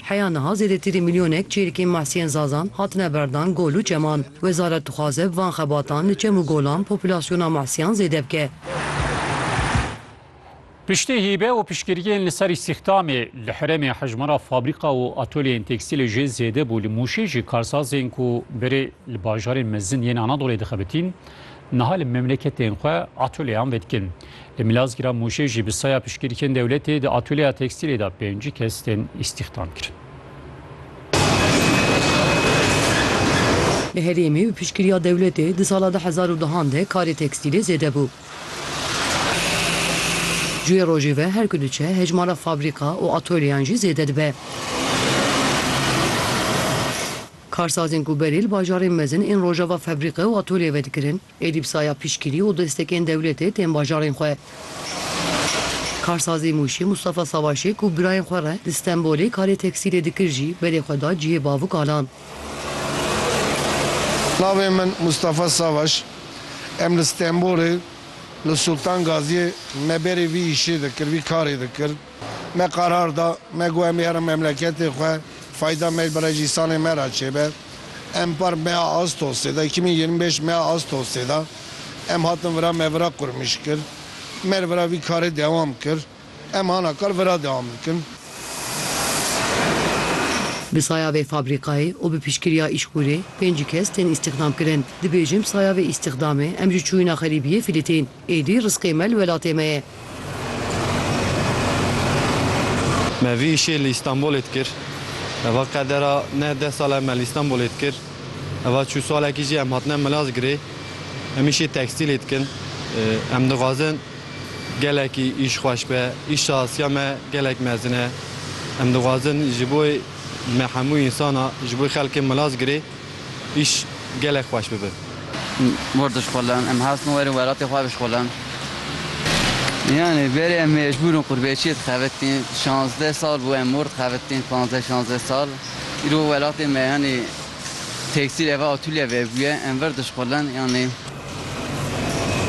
Heya niha zêdetirî milyonek çêrikên mahsiyên Zazan hatine berdan gol û çeman. Wezaret dixwaze bi van xebatan li çem û golan populasyona mahsiyan zêde bike. Piştî hîbe û piştgiriyên li ser îstîxdamê, li herêmê hejmara fabrîka û atolyeyên tekstîlê jê zêde bû. Li Mûşê jî karsazên ku berê li bajarên mezin yên Anadolê dixebitîn, niha li memleketên xwe atolyeyan vedikin. Li Milazgîra Mûşê jî bi saya piştgirîkên dewletê di atûlyeya tekstîlê de pêncî kes tên îstîxdam kirin. Li herêmê bi piştgiriya dewletê di sala du hezar û duhan de karê tekstîlê zêde bû. Cuyê rojê ve her ku diçe hejmara fabrîka û atolyeyan jî zêde dibe. Karsazên ku berê li bajarên mezin ên rojava febrîqe û atolye ve dikirin, Êdî bi saya piştgirî û destekên dewletê tên bajarên xwe. Karsazê Mûşê Mustafa Savaşê ku birayên xwe re li Stenbolê karê tekstîlê dikir jî berê xwe da cihê bavû kalan. Navê min Mustafa Savaş e. Em li Stenbolê li Sultan Gaziyê me berê vî îşê dikir, vî karê dikir. Me qarar da, me got em biherin memleketê xwe, fayda me bi rejîsalên me re çêbe. Em par meya Astosê de, iki mî yirmi pênc meya Astosê de em hatin vira me vira qurmîş kir. Me li vira vî karê dewam kir. Em hana kar vira dewam dikin. Bi saya vê fabrîkayê û bi piştgiriya Îşkurê pêncî kes tên îstîxdamkirin. Dibêjim saya vê îstîxdamê em ji çûyîna xerîbiyê filîtîn. Êdî rizqê me li welatê me ye. Me vî îşê li Îstanbulê dikir. Heva qedera ne deh sal e me li Îstanbulê dikir. Heva çû salekî jî em hatine Milazgirê. Em îşê tekstîlê dikin. Em dixwazin gelekî îş xweş be. Îş şahsiya me gelek mezin e. Em dixwazin ji bo me hemû însan a, ji bo xelkê Milazgirê. îş gelek xweş bibe. Mor dişxulin, em hestin werin welatê xwe bişxulin. Yanî berê em mecbûr in qurbeçiyê dixebitin. Şazdeh sal bû em mor dixebitin, panzdeh şazdeh sal. Îro welatê me yanî tekstîl eva atûlye vebûye, em vir dişxulin yanî.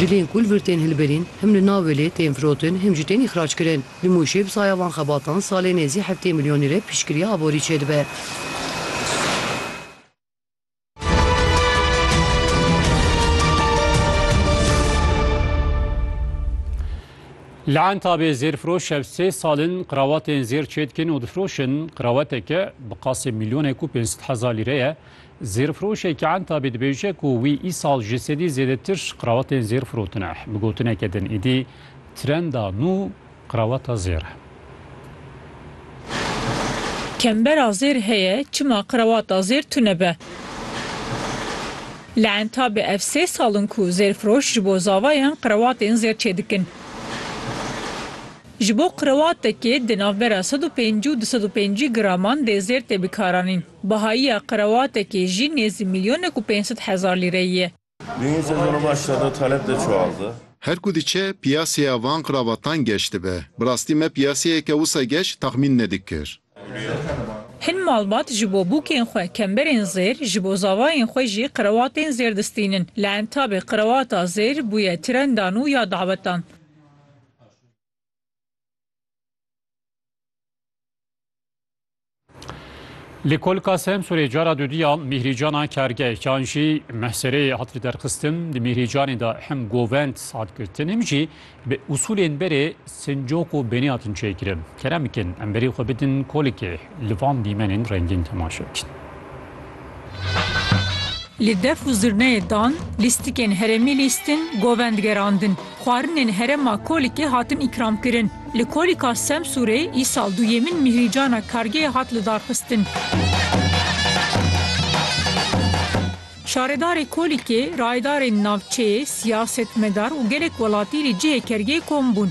Dilên ku li vir tên hilberîn, him li navê lê tên firotin, him jî tên îxrac kirin. Li Mûşê bi saya van xebatan salê nêzî heftê milyon lîre piştgiriya aborî çêdibe. Li Entabê zêrfiroş ev sê sal in qrawatên zêr çêdikin û difiroşin. Qraweteke bi qasê milyonek û pênc sed hezar lîre ye. Zêrfiroşeke Entabî dibêje ku wî îsal ji sedî zêdetir qrawatên zêr firotine. Bi gotineke din êdî trenda nû qrawata zêr e. Kembera zêr heye, çima qrawata zêr tune be? Li Entabê ev sê sal in ku zêrfiroş ji bo zavayan qrawatên zêr çêdikin. Ji bo qrawatekê di navbera sed û pêncî û du sed û pêncî graman dê zêr tê bikaranîn. Behayiya qrewatekê jî nêzî milyonek û pênc sed hezar lîreyî ye. Dûyîn sezona baş da do taleb de çiwaldi. Her ku diçe piyaseya van qrawatan geş dibe. Bi rastî me piyaseyeke wisa geş taxmîn nedikir. Hin malbat ji bo bûkên xwe kemberên zêr, ji bo zavayên xwe jî qrewatên zêr distînin. Li entabê qrewata zêr bûye trenda nû ya dawetan. Li Kolka Semsurê cara dudî ya Mîhrîcana kargehekan jî mehsereyê hat liderxistin. Di Mîhrîcanê de hem govend hat girtin hem jî bi usulên berê sincok û benî hatin çêkirin. Kerem bikin em berî xwe bidin kolikê li van dîmenên rengîn temaşe bikin. Li def û zirneyê dan, lîstikên herêmî lîstin, govend gerandin. Xwarinên herêma Kolikê hatin îkramkirin. Li Kolika Semsûrê îsal duyemîn mihrîcana kargeyê hat lidarxistin. Şaredarê Kolikê, rayedarên navçeyê, siyasetmedar û gelek welatî li cihê kergê kom bûn.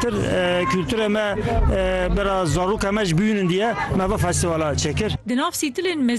Tir kulturê me bira zarûka me ji bûyînin diye me va festîvala çêkir. Di nav sîtilên mezin